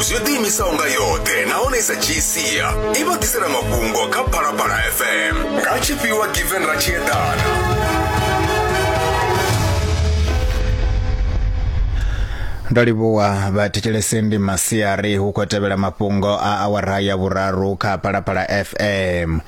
zwi ḓiimisaho nga yoṱhe nahone i sa dzhii sia i vha ḓisela mafhungo kha phalaphala fm nga tshifhiwa given ra tshi eḓana ndo livhuwa vhathetshelesi ndi masiari hu khou tevhela mafhungo a awara ya vhuraru kha phalaphala fm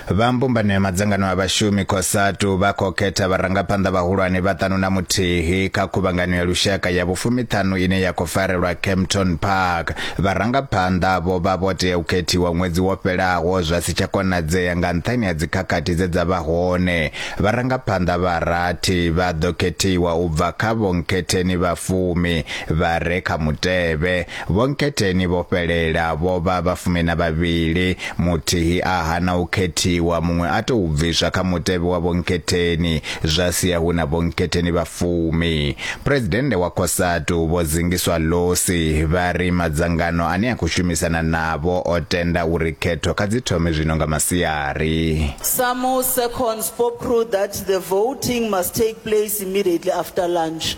Vha mbumbano ya madzangano a vhashumi Cosatu vha khou khetha vharangaphanḓa vhahulwane vha ṱanu na muthihi kha khuvhangano ya lushaka ya vhufumiṱhanu ine ya khou farelwa Kempton Park. Vharangaphanḓa vho vha vho tea u khethiwa ṅwedzi wo fhelaho zwa si tsha konadzea nga nṱhani ha dzikhakhathi dze dza vha hone. Vharangaphanḓa vha rathi vha ḓo khethiwa u bva kha vhonkhetheni vha fumi vha re kha mutevhe. Vho Nketheni vho fhelela, vho vha vha fumi na vhavhili. Muthihi a hana u khethiwa, muṅwe a tou bviswa kha mutevhe wa Vho Nketheni, zwa sia hu na Vho Nketheni vha fumi. Phresidennde wa Cosatu, Vho Zingiswa Losi, vha ri madzangano ane a khou shumisana navho o tenda uri khetho kha dzi thome zwino nga masiari. Samu Sekon spoke through that the voting must take place immediately after lunch.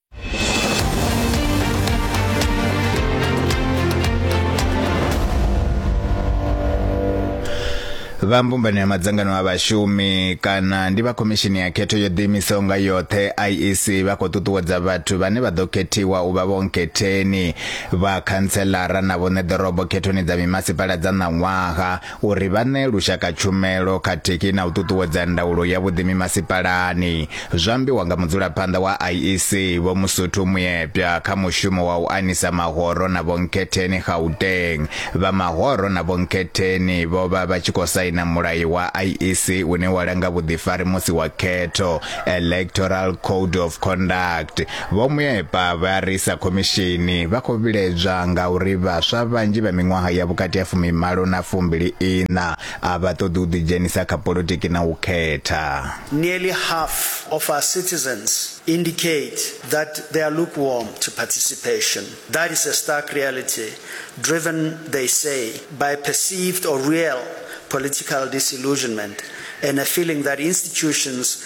vha mbumbano ya madzangano a vhashumi kana ndi vha khomishini ya khetho yo ḓiimisaho nga yoṱhe iec vha khou ṱuṱuwedza vhathu vhane vha ḓo khethiwa u vha vhonkhetheni vha khantselara na vhoṋe ḓorobo khethoni dza mimasipala dza ṋaṅwaha uri vha ṋee lushaka tshumelo khathihi na u ṱuṱuwedza ndaulo ya vhuḓi mimasipalani, zwo ambiwa nga mudzulaphanḓa wa IEC Vho Musuthu Muyepya kha mushumo wa u anisa mahoro na vhonkhetheni Gauteng. Vha mahoro na vhonkhetheni vho vha vha tshi khou saina mulayo wa IEC une wa langa vhuḓifari musi wa khetho, Electoral Code of Conduct. Vho Muepa vha ri sa khomishini vha khou vhiledzwa nga uri vhaswa vhanzhi vha miṅwaha ya vhukati ha fumimalo na fumbili iṋa a vha ṱoḓi u ḓidzhenisa kha politiki na u khetha. Nearly half of our citizens indicate that they are lukewarm to participation. That is a stark reality driven, they say, by perceived or real political disillusionment and a feeling that institutions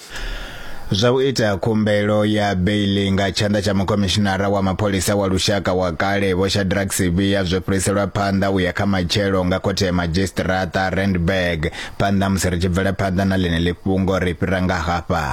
zwa u ita khumbelo ya beili nga tshanḓa tsha mukhomishinara wa mapholisa wa lushaka wa kale vho shadrack sivhiya zwo fhiriselwa phanḓa u ya kha matshelo nga khothe ya madzhisiṱiraṱa randburg phanḓa musi ri tshi bvela phanḓa na ḽine ḽi fhungo ri fhira nga hafha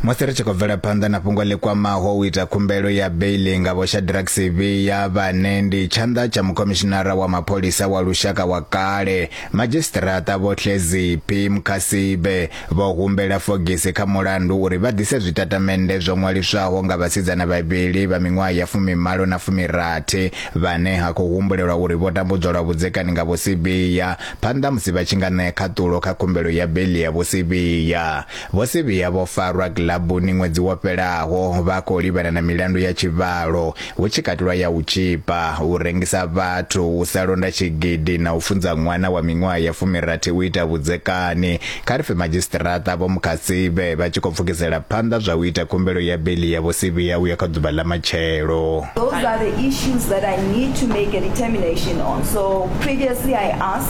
musi ri tshi khou bvela phanḓa na fhungo ḽi kwamaho u ita khumbelo ya beili nga vho shadrack sivhiya vhane ndi tshanḓa tsha mukhomishinara wa mapholisa wa lushaka wa kale madzhisiṱiraṱa vho hleziphi mukhasibe vho humbela fogisi kha mulandu uri vha ḓise zwitatamennde zwo ṅwaliswaho nga vhasidzana vhavhili vha miṅwaha ya fumimalo na fumirathi vhane ha khou humbulelwa uri vho tambudzwa lwa vhudzekani nga vho sivhiya phanḓa musi vha tshi nga ṋea khaṱulo kha khumbelo ya beili ya vho sivhiya Vho Sibiya vho farwa kilabuni ṅwedzi wo fhelaho vha khou livhana na milandu ya tshivhalo, hu tshi katelwa ya u tzhipa, u rengisa vhathu, u sa londa tshigidi na u funza ṅwana wa miṅwaha ya fumirathi u ita vhudzekani, kha ri pfe Madzhisiṱiraṱa Vho Mukhatsibe vha tshi khou pfukisela phanḓa zwa u ita khumbelo ya beiḽi ya Vho Sibiya u ya kha ḓuvha ḽa matshelo. Those are the issues that I need to make a determination on, so previously I asked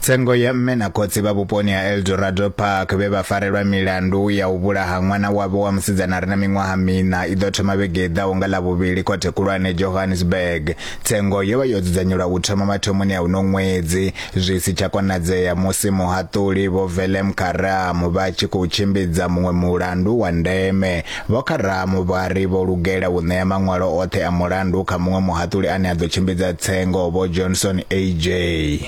Tsengo ya mme na khotsi vha vhuponi ha Eldorado Park vhe vha farelwa milandu ya u vhulaha ṅwana wavho wa musidzana re na miṅwaha miṋa i ḓo thoma vhege i ḓaho nga Lavhuvhili khothe khulwane Johannesburg. Tsengo yo vha yo dzudzanyelwa u thoma mathomoni a uno ṅwedzi zwi si tsha konadzea musi muhaṱuli Vho Velem Karam vha tshi khou tshimbidza muṅwe mulandu wa ndeme Vho Karamo vha ri vho lugela u ṋea maṅwalo oṱhe a mulandu kha muṅwe muhaṱuli ane a ḓo tshimbidza tsengo, Vho Johnson AJ.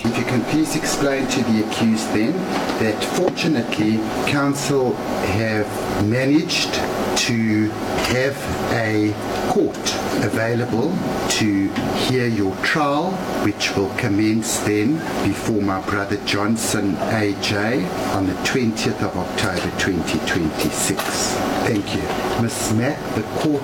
If you can please explain to the accused then that fortunately counsel have managed to have a court available to hear your trial which will commence then before my brother Johnson AJ on the 20th of October 2026. Thank you. Miss Matt, the court,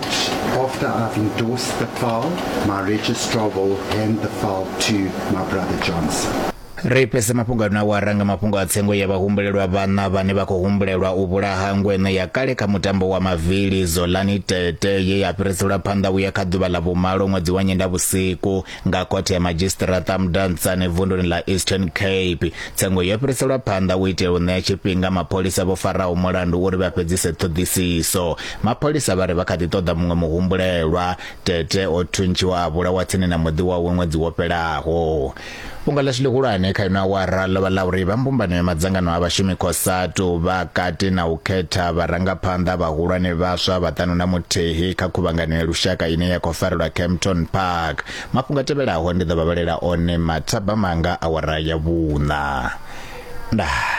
after I've endorsed the file, my registrar will hand the file to my brother Johnson. ri fhese mafhungo ano awara nga mafhungo a tsengo ya vhahumbulelwa vhana vhane vha khou humbulelwa u vhulaha ngweno ya kale kha mutambo wa mavili zolani tete ye ya fhiriselwa phanḓa vhuya kha ḓuvha ḽa vhumalo ṅwedzi wa nyenda vhusiku nga khothe ya madzhisiṱiraṱa mudantsane vunduni ḽa eastern cape tsengo yo fhiriselwa phanḓa u itela u ṋea tshifhinga mapholisa vho faraho mulandu uri vha fhedzise ṱhoḓisiso mapholisa vha ri vha kha ḓi ṱoḓa muṅwe muhumbulelwa tete o thuntshiwa a vhulawa tsini na muḓi wawe ṅwedzi wo fhelaho fhungo ḽashu ḽihulwane kha ino awara ḽo vha ḽa uri vha mbumbano ya madzangano a vhashumi khosatu vha kati na u khetha vharangaphanḓa vhahulwane vhaswa vhaṱanu na muthihi kha khuvhangano ya lushaka ine ya khou farelwa campton park Isaac. Mafhungo a tevhelaho ndi ḓo vha vhalela one mathaba manga awara ya vhuṋa. Ndaa.